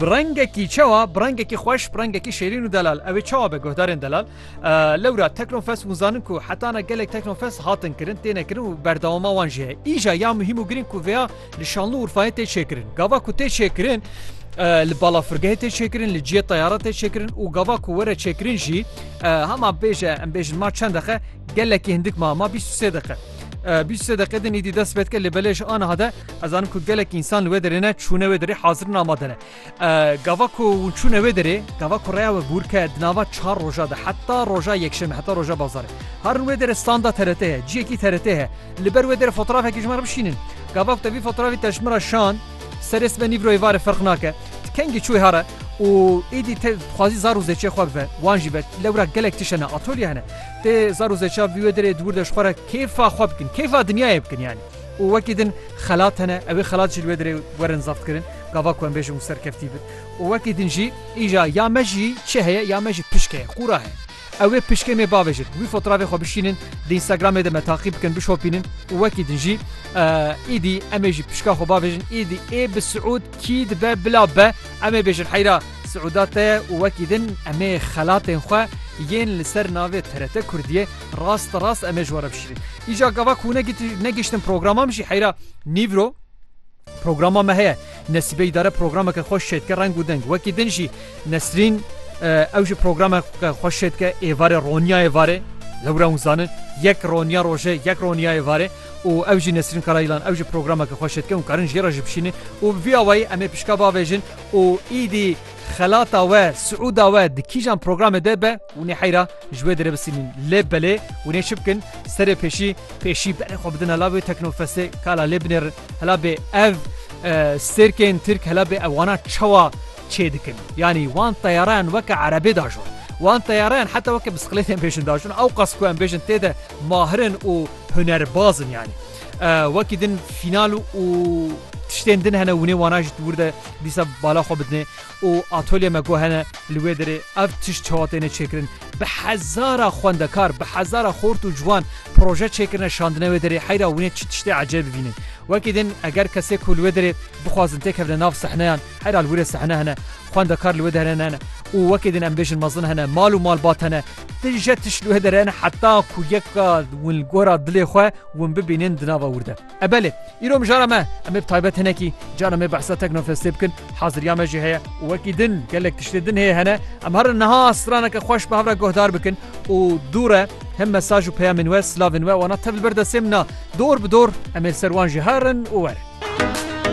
Bi rengekî çawa bi rengekî xweş bi rengekî şêrîn û delal ew ê çawa be guhdarên delal lewra Teknofest hûn zanin ku heta na gelek Teknofest hatin kirin têne kirin û berdewama wan jî heye îja ya muhîm û girîng ku vêya li şanlû urfayê tê çêkirin gava ku tê çêkirin li balafirgehê tê çêkirin li ciyê teyara tê çêkirin û gava ku were çêkirin jî hema bêje em bêjin ma çend dexe gelekî hindik ma ma bîst sê dexe bîst sê deqê din îdî dest pêdike lê belêj aniha de Ez zanim ku gelek însan li wê derê ne çûne wê derê hazirin amade ne. Gava ku hûn çûne wê derê, gava ku reya we bûrke di nava çar roja de heta roja yekşeme heta roja bazarê. Harin wê derê standa TRT heye, ciyekî TRT heye. Li ber wê derê fotoğrafekî ji me re bişînin. Gava ku te vî fotoğrafî te ji min re şand, serê sibe nîvroyê varê ferq nake. Tu kengî çûyî here û êdî te dixwazî zar û zêçê xwe bive. Wan jî be. Lewra gelek tişt hene, atolye hene. Tê zar û zêça vî wê derê di wir de ji xwe re kêfa xwe bikin, kêfa dinyayê bikin yanî. Û wekî din xelat hene, ewê xelat jî li wê derê werin zebtkirin, gava ku em bêjin û serkeftî bin. Û wekî din jî îja ya me jî çi heye, ya me jî pişk heye, qûra heye. Ewê pişkê me bavêjin, wî fotravê xwe bişînin, di Instagramê de me taqîb bikin, bişopînin û wekî din jî îdî em ê jî pişka xwe bavêjin, îdî ê bi Siûd kî dibe bila be, em ê bêjin heyra Siûda te ye û wekî din em ê xelatên xwe yên li ser navê TRT Kurdiyê, Rast rast em ê ji we re bişîrin. Îca gava ku negiştin programa min jî heyra nîvro programa me heye. Nesîbe îdare programeke xweş şêdike reng û deng. Wekî din jî Nesrîn ew ji programa xweş şêdike êvarê Ronyayê varê. Lewra hûn zanin yek roniya roje yek roniya êvarê û ew jî Nesrîn Karayîlan ew jî programeke xweş şêdike û karin jê re ji bişînin û vî awayî em ê pişka bavêjin û îdî xelata we siûda we di kîjan programê de be hûnê heyra Ji wê direbisînin lê belê hûnê çi bikin serê pêşî pêşî berê xwe bidin hela wê teknofestê kala lê binêrin hela bê ev sêrkên tirk hela bê ev wana çawa çê dikin yanî wan teyarayan weke erebê dajon wan teyarayan heta weke bisiklêtên pêşin dajon ew qas ku em bêjin tê de mahirin û hunerbazin yanî wekî din fînal û tiştên din hene hûnê wana ji wir de dîsa bala xwe bidinê û atolye me ku hene li wê derê ev tişt çawa têne çêkirin. Bi hezara xwendekar, bi hezara xort û ciwan proje çêkirine şandine wê derê heyra wînê çi tiştê ecêb bibînin. Wekî din eger kesê ku li wê derê bixwazin têkevine nav sehneyan heyra li wî re sehne hene, xwendekar li wê dehre hene û wekî din em bêjin mezin hene, mal û malbat hene, ti je tişt li wê derê hene heta ku yek win li gora dilê xwe win bibînin di nava wûrde. E belê, îro mijara me, em ê bi taybet hinekî caran me behsa Teknofestê bikin, haziriya me jî heye û wekî din gelek tiştê din hê hene. Em herin niha straneke xweş bi hev re guhdar bikin û dûr e him mesaj û peyamên we, silavên we wana tev li ber destê min e. Dor bi dor em ê li ser wan jî herin û werin.